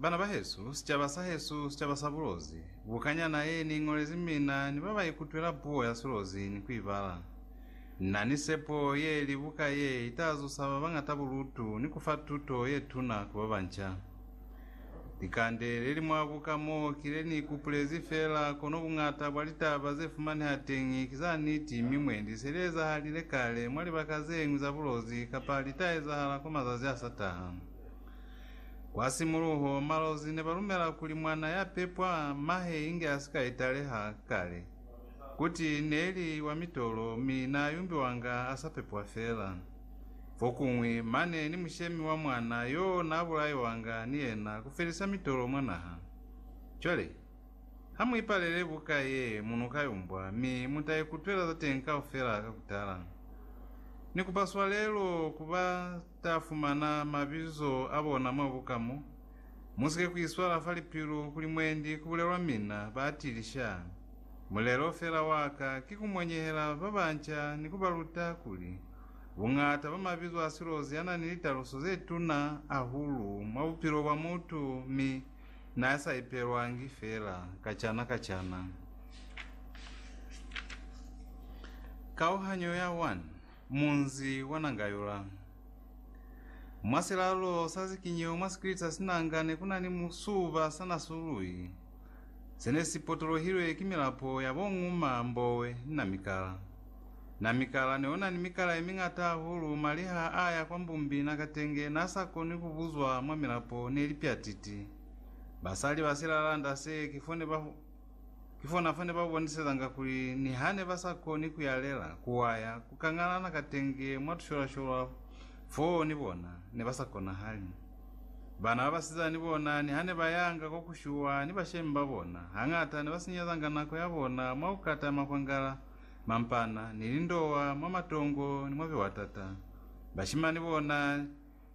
Bana bahesu, sicaba sahesu, sicaba sa bulozi, bukanyana ye ni iñolezi mina ni ba ba ikutwela puo ya silozi ni ku ibala. Na ni sepo ye li buka ye ita zusa ba bañata bulutu ni ku fa tuto ye tuna ku ba banca. Likande le li mwa buka mo ki le ni ikupulezi fela, kono buñata bwa litaba ze fumaneha teñi ki za niti mi mwendi se li ezahalile kale mwa libaka ze ñwi za bulozi kapa li ta ezahala kwa mazazi a sa taha. Kwa simuluho, malozi ne ba lumela kuli mwana ya pepwa mahe inge a si ka italeha kale. Kuti ne li wa mitolo mi n'a yumbiwanga a sa pepwa fela. Fokuñwi, mane ni mushemi wa mwana yo n'a bulaiwanga ni yena ku felisa mitolo mwa naha. Cwale, ha mu ipalele buka ye mu n'o ka yumbwa mi mu ta ikutwela za teñi kaufela ka ku tala. Ni kupa swalelo ku ba. Ta fumana mabizo a bona mwa buka mo. Musike ku iswala fa lipilu kuli mwendi ku bulelwa mina ba atili sha. Mulelo fela wa ka ki ku monyehela ba banca ni ku ba luta kuli, buñata bwa mabizo a silozi a na ni litaluso ze tuna ahulu mwa bupilo bwa mutu mi n'a sa ipelwangi fela kacana kacana. Kauhanyo ya 1. Munzi wa nanga yola. Mwa silalo sa zikinyo mwa sikrita sinanga ne ku na ni musuba sa nasului se ne si potolohilwe ki milapo ya bo nguma, mbowe, ni na mikala. Na mikala ne o na ni mikala ye miñata hahulu, mali ha a ya kwa mbumbi na katenge na sa koni ku buzwa mwa milapo ne li pyatiti. Basali ba silalanda se ki fo ne ba Kifona fane ba bonisezanga kuli nihane ba sa koni ku yalela, ku waya, ku kangalana katenge mwa tusholasholwa foo ni bona, ne ba sa konahali. Bana ba basizana ni bona nihane ba yanga kwa ku shuwa ni bashemi ba bona, hañata ne ba sinyezanga nako ya bona mwa ku kata makwangala, mampana, ni lindowa mwa matongo ni mwa biwatata. Bashimani bona.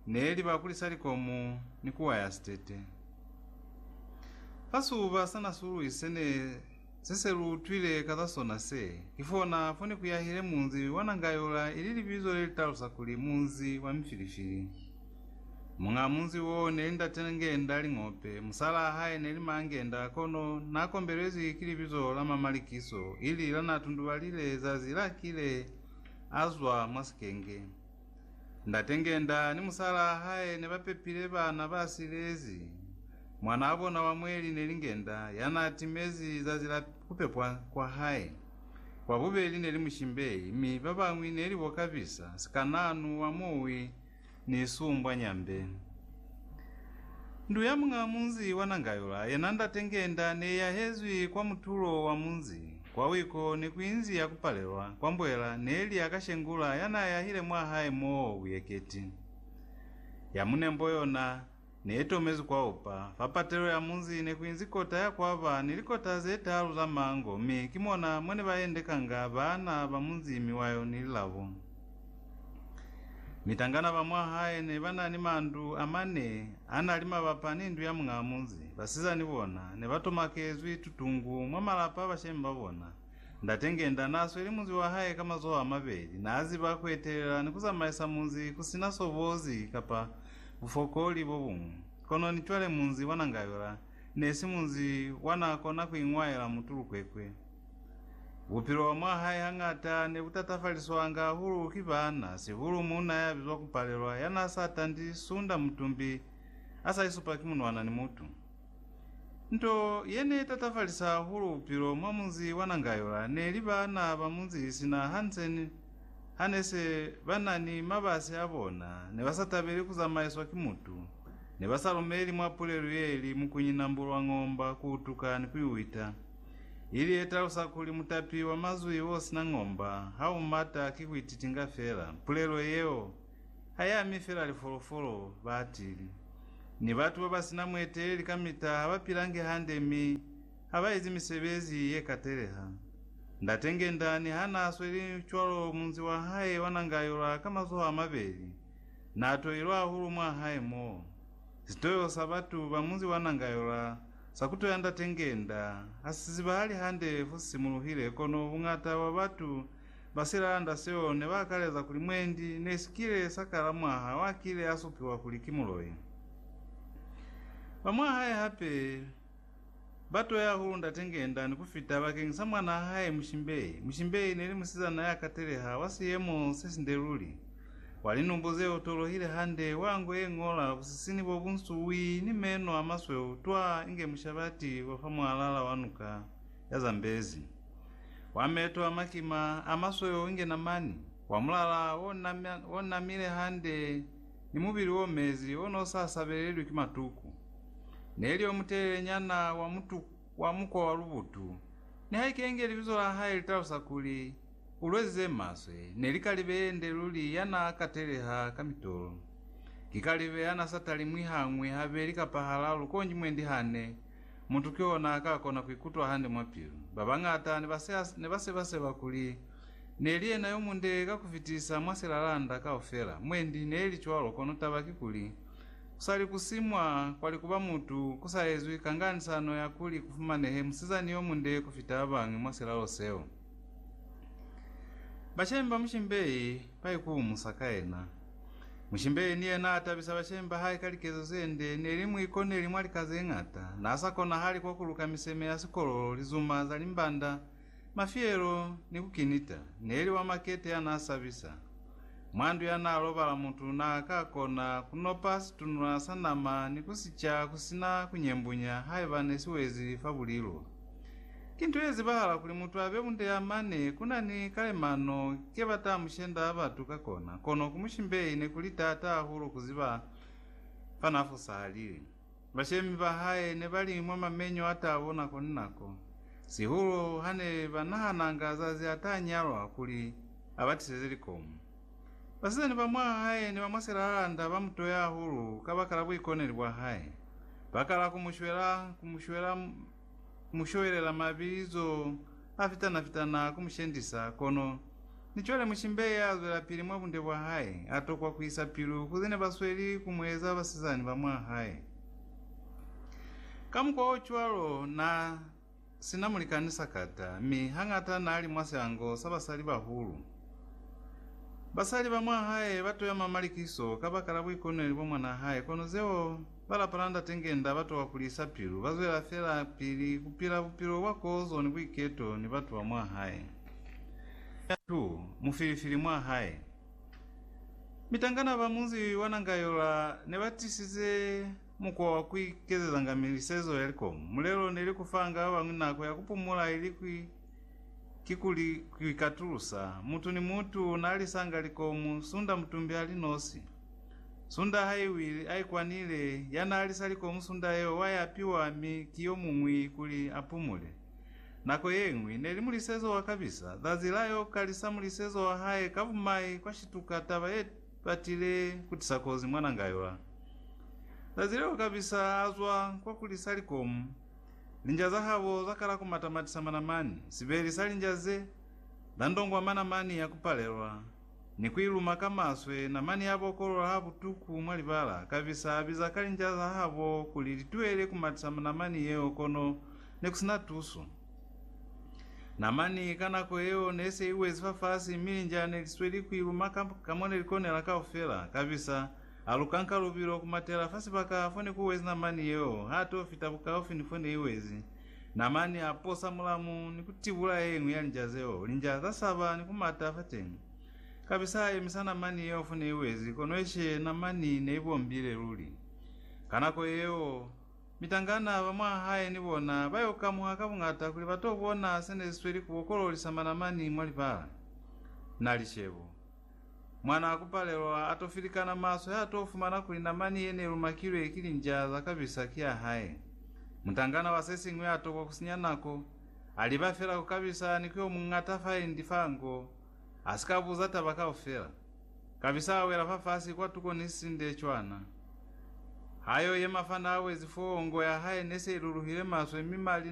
Ne li ba kulisa likomu ni ku waya sitete. Fa siuba sa nasulwi se ne se se lu utwile ka za sona se, ki fona fo ne ku yahile munzi wa Nangayola ili libizo le li talusa kuli Munzi wa Mifilifili. Muñaa munzi wo neli Ndate Ngenda Ling'ope, musalaa hae neli Maa Ngenda kono na kombelezwi ki libizo la mwa Malikiso ili la na tundubalile zazi la kile a zwa mwa sikenge. Ndate Ngenda ni musalaa hae ne ba pepile bana ba silezi. Mwanaa bona wa mweli ne li Ngenda ya naa timezi zazi la ku pepwa kwa hae. Wa bubeli ne li Mushimbei mi ba bañwi ne li bo Kabisa, sikanaanu wa muwi ni sumbwa nyambe. Ndu ya muñaa munzi wa Nangayula yena Ndate Ngenda ne i yahezwi kwa mutulo wa munzi. Kwa wiko ne ku inzi ya ku palelwa kwa mbwela ne li ya ka Shengula ya n'a yahile mwa hae m'o buyeketi. Ya mu nembo yona ne i tomezwi kwa upa. Fa patelo ya munzi ne ku inzi kota ya kwa ba ni likota ze taalu za mango mi ki mona mwa ne ba endekanga baana ba munzi mi wa yo ni lilabo. Mitangana ba mwa hae ne ba na ni mandu a mane a na li mabapa ni ndu ya muñaa munzi. Basizani bona ne ba tomakezwi tutungu mwa malapa a bashemi ba bona. Ndate Ngenda n'a sweli munzi wa hae ka mazoho a mabeli. N'a ziba ku etelela ni ku zamaisa munzi ku si na sobozi kapa bufokoli bo buñwi. Kono ni cwale munzi wa Nangayola ne si munzi wa n'a kona ku iñwaela mutulukwekwe. Bupilo bwa mwa hae hañata ne bu tatafaliswanga hahulu ki baana, sihulu muuna ya bizwa ku Palelwa ya n'a sa tandi sunda mutumbi a sa isupa ki munwana ni mutu. Nto ye n'e tatafalisa hahulu bupilo mwa munzi wa Nangayola ne li baana ba munzi sina Hansen ha ne se ba na ni mabasi a bona ne ba sa tabeli ku zamaiswa ki mutu, ne ba sa lumeli mwa pulelu ye li Mukunyina Mbulwang'omba ku utuka ni ku i wita. ili yetalusa kuli mutapi wa mazwi osina ng'omba ha u mata ki kuititinga fela. Pulelo yeo ha i ami fela lifolofolo, baatili, ni batu babasina mueteleli kamita ha ba pilangi hande mi ha ba ezi misebezi ye kateleha. Ndate Ngendani ha naa sweli cwalo munzi wa hae wa nanga yola ka mazoho a mabeli, naa toilwe hahulu mwa hae mo. Sitoyo sa batu ba munzi wa nanga yola Sa kuto ya ndate ngenda ha si zibahali hande fu simuluhile, kono buñata bwa batu ba si lalanda seo ne ba akaleza kuli mwendi ne si kile sa kala mwaha wa kile a supiwa kuli ki muloi. Ba mwa hae hape ba toya hahulu ndate ngenda ni ku fita bakeñi sa mwanaa hae Mushimbei. Mushimbei ne li musizana ya kateleha wa siyemo se sinde luli. Kwa linubu ze u tolohile hande, wa ngwe ye ñola, busisini bo bu nsuwi, ni meno a masweu twa inge mushabati wa fa mwalala wa nuka ya zambezi. Wa meto a makima, a masweu inge namani, wa mulala o namile hande, ni mubili o mezi, o ne u sa sabelelwi ki matuku. Ne li yo mutelele nyana, wa mukwa wa lubutu. Nihaike inge libizo la hae li talusa kuli, Ulwe ze maswe ne li kalibe yende luli ya n'a kateleha ka mitolo. Ki kalibe ya n'a sa talimwi hañwi, habeli kapa halalu konji mwendi hane mutu ki ona a ka kona ku ikutwa hande mwa pilu. Ba bañata ne ba se ne ba seba seba kuli ne li yena yo munde ka ku fitisa mwa silalanda kaufela. Mwendi ne li cwalo kono taba ki kuli, ku sa li ku simwa kwa likuba mutu ku sa ezwi kanganisano ya kuli ku fumanehe musizani yo munde ku fita ba bañwi mwa silalo seo. Bashemi ba mushimbei baikuumusa ka yena. Mushimbei ni yena atabisa bashemi bahae ka likezo zende, neli muikoneli mwa lika zeñata, naasa konahali kwa kuluka miseme ya sikololo, lizuma za limbanda, mafielo, ni kukinita, neli wa makete yanaasabisa. Mwandu yanaalobala mutu naakakona kunopa situnula sa nama ni kusica kusina kunyembunya haiba nesiwezi fa bulilo. Ki nto ye zibahala kuli mutu abe bunde ya mane ku na ni kalemano ke ba ta mu shenda batu ka kona, kono ku mushimbeyi ne ku li taata hahulu ku ziba fa n'a fosahalile. Bashemi ba hae ne ba li mwa mamenyo a tabo nako ni nako, sihulu ha ne ba nahananga zazi a ta nyalwa kuli a ba tiseze likomo. Basizani ba mwa hae ni ba mwa silalalanda ba mu toya hahulu kabakala buikoneli bwa hae, ba kala ku mu shwela, ku mu shwela, ku mu showelela mabizo a fitana-fitana ku mu shendisa, kono ni cwale mushimbe ya zwelapili mwa bunde bwa hae a tokwa ku isa pilu ku ze ne ba sweli ku mu eza basizani ba mwa hae. Ka mukwa o cwalo, n'a si na mulikani sakata, mi hañata n'a li mwa siango sa basalibahulu. Basali ba mwa hae ba toyama malikiso kabakala buikoneli bwa mwanaa hae, kono zeo Ba lapa la Ndate Ngenda ba towa ku lisa pilu. Ba zwela fela pili ku pila bupilo bwa kozo ni buiketo ni batu ba mwa hae. Mwa tu, mu filifili mwa hae. Mitangana ba munzi wa Nangayola ne ba tisize mukwa wa ku ikezezanga milisezo ya likomu. Mulelo neli ku fanga ba bañwi nako ya ku pumula ili ku Kikuli kuikatulusa. Mutu ni mutu naalisanga likomu, sunda mutumbi ali nosi. Sunda haiwile aikwanile, yanaalisa likomu sunda yeo waiapiwa mi ki yomuñwi kuli apumule. Nako yeñwi, neli mulisezo wa kabisa, zazi la yo kalisa mulisezo wa hae ka bumai kwa shituka taba ye batile kutisa kozi mwananga ywa. Zazi leo kabisa azwa kwa kulisa likomu. Linja za habo za kala ku matamatisa manamani, sibeli sa linja ze, la ndongwa manamani ya ku palelwa, ni ku iluma ka maswe, namani ya bokolola ha butuku mwa libala, kabisa a biza ka linja za habo kuli li tuele ku matisa namani yeo kono ne ku sina tuso. Namani ka nako yeo ne se i wezi fafasi mi linja ne li sweli ku iluma ka mo ne li konela kaufela, kabisa Ha lu kanka lubilo ku matela fa sibaka fo ne ku wezi namani yeo, ha to fita bukaufi ni fo ne i wezi. Namani a posa mulamu ni ku tibula ye ñwi ya linja zeo. Linja za saba ni ku mata fateñi. Kapisa a yemisa namani yeo fo ne i wezi, kono eshi namani ne i bombile luli. Ka nako yeo, mitangana ba mwa hae ni bona ba yo kamuha ka buñata kuli ba to bona se ne si sweli ku bokololisa manamani mwa libala. Na lishebo. Mwanaa ku palelwa, a to filikana maswe ha to fumana kuli namani ye ne lumakilwe ki linjaa za kabisa ki ya hae. Mutangana wa se siñwi a tokwa ku sinya nako, a liba fela ku kabisa ni ku yo muñata fa endi fa nko, a si ka buza taba kaufela. Kabisa a wela fafasi kwa tuko ni sisinde cwana. Ha yo yema fanda a wezi foo, nko ya hae ne se i luluhile maswe mi mali